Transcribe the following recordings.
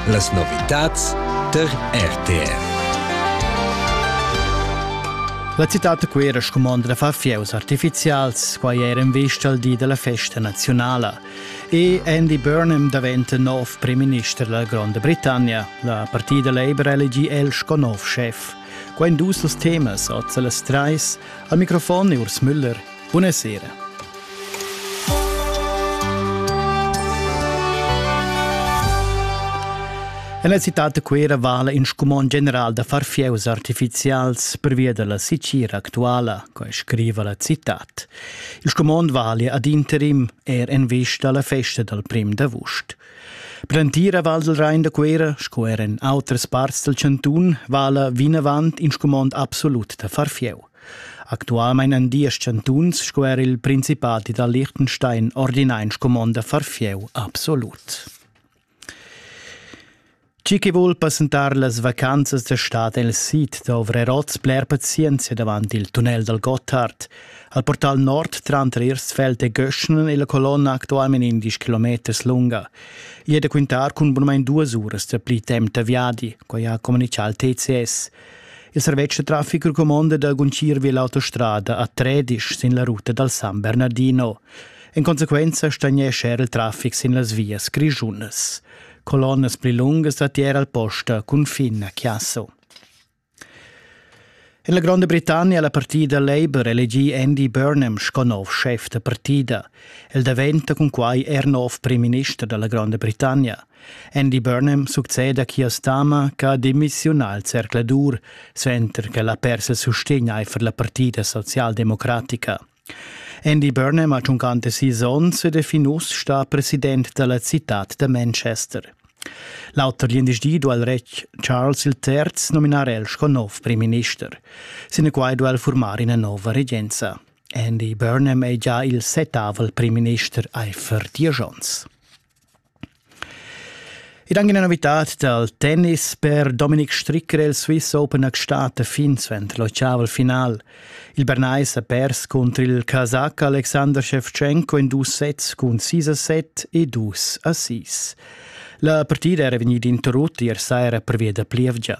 Las novitads tar RTR. La citad da Cuera scumondra far fieus artifizials, quai era in vista al di della festa nazionala. E Andy Burnham daventa nov premierminister della Gronda Britannia. La partida Labour elegì el sco nov chef. Quai in dus temas, oz las treis. Al microfon Urs Müller Bunasera. En la citad da Cuera vala in scumond general da far fieus artificials pervia dalla sicira actuala, quai scriva la citad. Il scumond vali ad interim er en vista alla festa dal prim d'avust. Per l'entira Val del Rhein da Cuera, sco er en outras parts del cantun, vala vinavant in scumond absolut da far fieu. Actualmein han diesch chantuns sco er il Principati da Liechtenstein ordinai in scumond da far fieu absolut. Chi che vul passentar las vacanzas da stad el sid da Ovreroz bler pazienzia davant il tunnel dal Gotthard. Al portal nord tranter Irstfeld e Göschnen è la colonna actualment 11 km lunga. Ia è da quintar cun bunamain duas uras da pli temp da viadi, quai ha comunicato il TCS. Il servetsch traffic recomonda da guncir vi l'autostrada a Tredisch sin la ruta dal San Bernardino. En conseguenza stagnescha il traffic sin las vias grischunas. Colonnas pli lungas da tier al posta confin a Chiasso. En la Gronda Britannia la partida Labour elegì Andy Burnham sco nov chef da partida. El daventa cun quai er nov prim minister da la Gronda Britannia. Andy Burnham succeda quiast dama che ha demissiunà al zercladur, suenter che la persa sustegn aifer la partida socialdemocratica. Andy Burnham ha giuncante sis onns ed è fin uss stà president della città da Manchester. L'auter gl'individu al retg Charles III nominar el sco nov premierminister. Sinaquai duel formar ina nova regenza. Andy Burnham è già il setavel premierminister Eifer Diajons. Ed anche una novità dal tennis per Dominik Stricker il Swiss Open a Gstaad fin suenter l'octaval final. Il Bernais ha pers contro il Kazakh Alexander Shevchenko in dus sets cun 6 a 7 e 2 a 6. La partida era vegnida interrotta ier saira pervia da plievgia.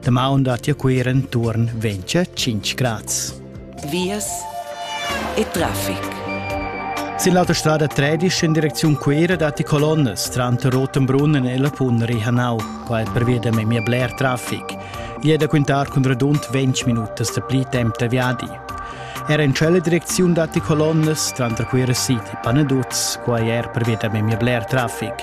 Damaun da tia cuira enturn 25 grads. Vias e traffic. Sin l'autostrada 13 in direcziun Cuira datti colonnas tranter Rotenbrunnen e la Pun Rihanau. Qua è pervia memia bler traffic. Gli è da quintar cun radund 20 minutas da pli temp da viadi. Era in cella direcziun datti colonnas tranter Cuira City e Panaduz. Qua è er pervia memia bler traffic.